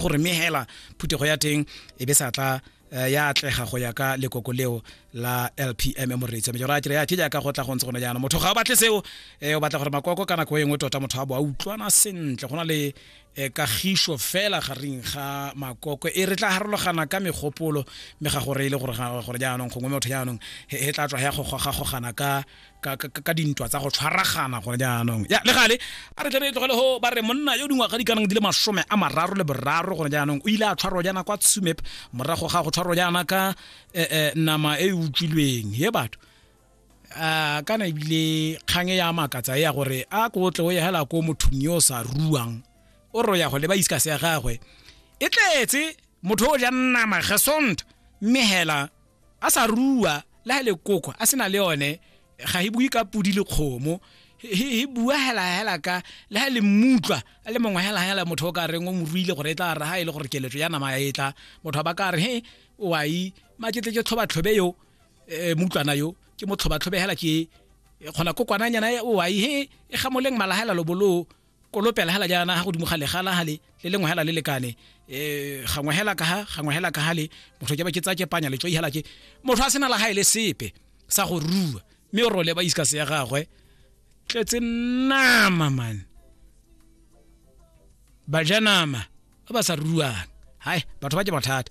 gore mme hela phuthego ya teng e be sa tla eh, ya atlega go ya ka lekoko leo la lpm moreitso mejoro a kere ya ke jaaka go tla go ntse gone jaanong motho ga o batle seo um o batla gore makoko ka nako e nngwe tota motho a bo a utlwana sentle go na le um kagišo fela gareng ga makoko e re tla harologana ka megopolo mme ga gore e le gore jaanong gongwe motho jaanong e tla tswa ya gogogagogana ka ka, ka, ka dintwa tsa go tshwaragana gone jaanong ya le gale a re tlebe tlogele go ba re monna yo dingwaga di kanang di le masome a mararo le boraro gone jaanong o ile a tshwarwa jaana kwa tsumep morago ga go tshwarwa jaana ka eh, eh, nama e e utswilweng ye batho a kana ebile kgang e ya makatsa e ya gore a ko tle o ye hela ko mothong yo o sa ruang o ro ya go leba iska se ya gagwe e tletse motho o ja nama gesond mme hela a sa rua le ha le koko a sena le one ga e bue ka pudi le kgomo e bua hela hela ka le ha le mmutlwa a le mongwe hela hela motho o ka reng o mo ruile gore e tla ra ha e le gore keletso ya nama e tla motho ba ka re he o a i maketle ke tlhoba tlhobe yo eh, mutlwana yo ke mo tlhoba tlhobe hela ke kgona kokwananyana e o a i he e gamoleng malahela lobolo kolopela hela jaana ha godimo ga legala hale le lengwe hela le lekane um gangwe hela ka ha gangwe hela ka hale motho ke ba ke tsa ke panya letso ihela ke motho a sena la gae le sepe sa go rua mme o role ba iska se ya gagwe tletse nama man bajanama ba ba sa ruang hai batho ba ke bothata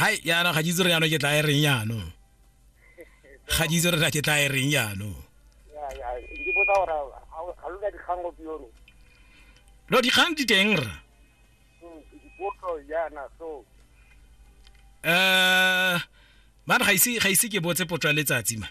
hai yaanong ga ke itse re yaanong ke tla e reng yaanong ga ke itse re ke tla e reng yaanong no dikgang di teng ra um hmm, man ga ise ke botse potso ya letsatsi man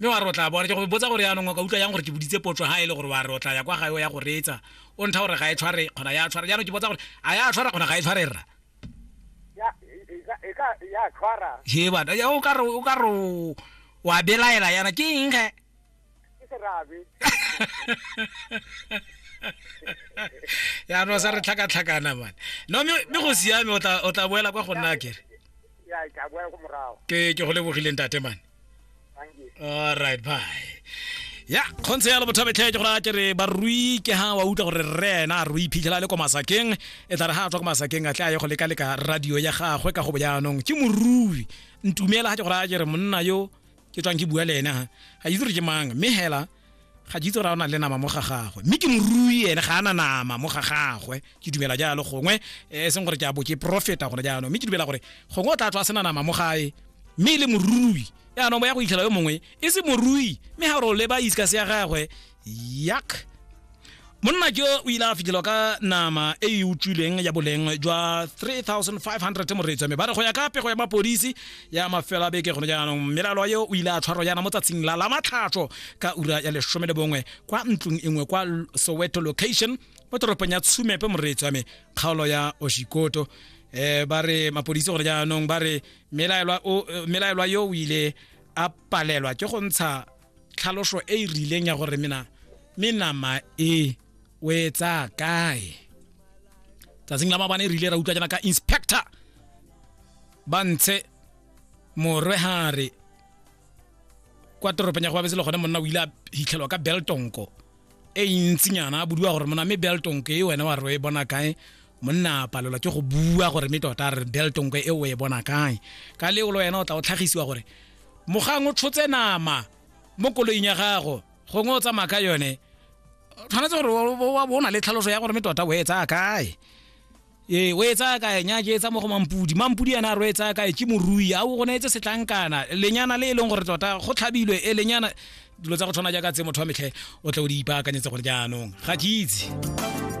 Mme wa re o tla bona. Ke go botsa gore yaanong o ka utlwa jang gore ke boditse potso ha e le gore wa re o tla ya kwa gae o ya go reetsa, o ntha gore ga e tshware kgona ya tshwara. Jaanong ke botsa gore a ya tshwara kgona ga e tshware rra? Ya, e ka, e ka, ya tshwara. He bana, ya o ka re, o ka re o- wa belaela yana ke eng ge? Ke serabe. Yaanong sa re tlhakatlhakana man. No mme mme go siame o tla o tla boela kwa go nna kere. Ya, ke a boela ko morago. Ke ke go lebogile ntate man. all right bye ya kgontse ya lobothabetlhe ke gore a ke re barui ke ha wa utlwa gore rre ena a rui phitlhela le ko masakeng e tla re ha a tswa ko masakeng a tle a ye go leka-leka radio ya gagwe ka go bojaanong ke morui ntumela ga ke gore a ke re monna yo ke tswang ke bua le ena ga itse gore ke mang mme hela ga jitse ra o na le nama mo ga gagwe mme ke morui ene ga ana nama mo ga gagwe ke dumela jalo gongwe eh, e seng gore ke a bo ke profeta gone jaanong mme ke dumela gore gongwe o tla tswa a sena nama mo gae mme e le morui yaanong bo ya go itlhela yo mongwe e se morui mme ga gore o leba iskase ya gagwe yak monna jo o ile a fitlhelwa ka nama e e utswileng ya boleng jwa 3500 moreetswa mme ba re go ya ka pego ya mapodisi ya mafelo a beke gone jaanong mmelalo yo o ile a tshwarwa yana mo tsatsing la la matlhatso ka ura ya lesome le bongwe kwa ntlong e nngwe kwa soweto location mo toropong ya tshumepe moreetswa me kgaolo ya oshikoto eh ba re mapodisi gore jaanong ba re melaelwa o- eh, melaelwa yo o ile a palelwa ke go ntsha tlhaloso e e rileng ya gore mena me nama e o e tsaya kae tsatsing la mabane e rile ra utlwa jana ka inspector ba ntshe morwe hare kwa toropong ya go babetse le gone monna o ile a hitlhelwa ka beltonko e ntsinyana a bodiwa gore mona mme beltonko e wena wa re o e bona kae monna palelwa ke go bua gore mme tota a re beltonko e o e bona kae ka leolo wena o tla o tlhagisiwa gore mogang o tshotse nama mo koloing ya gago gongwe o tsamaya ka yone tshwanetse gore o na le tlhaloso ya gore mme tota o e tsaya kae ee o e tsaya kae nya ke e tsaya mo go mampudi mampudi ena a re o e tsaya kae ke morui a o go neetse setlankana lenyana le e leng gore tota go tlhabilwe e lenyana dilo tsa go tshwana jaaka tse motho wa metlhe o tle o di ipaakanyetse gore jaanong ga ke itse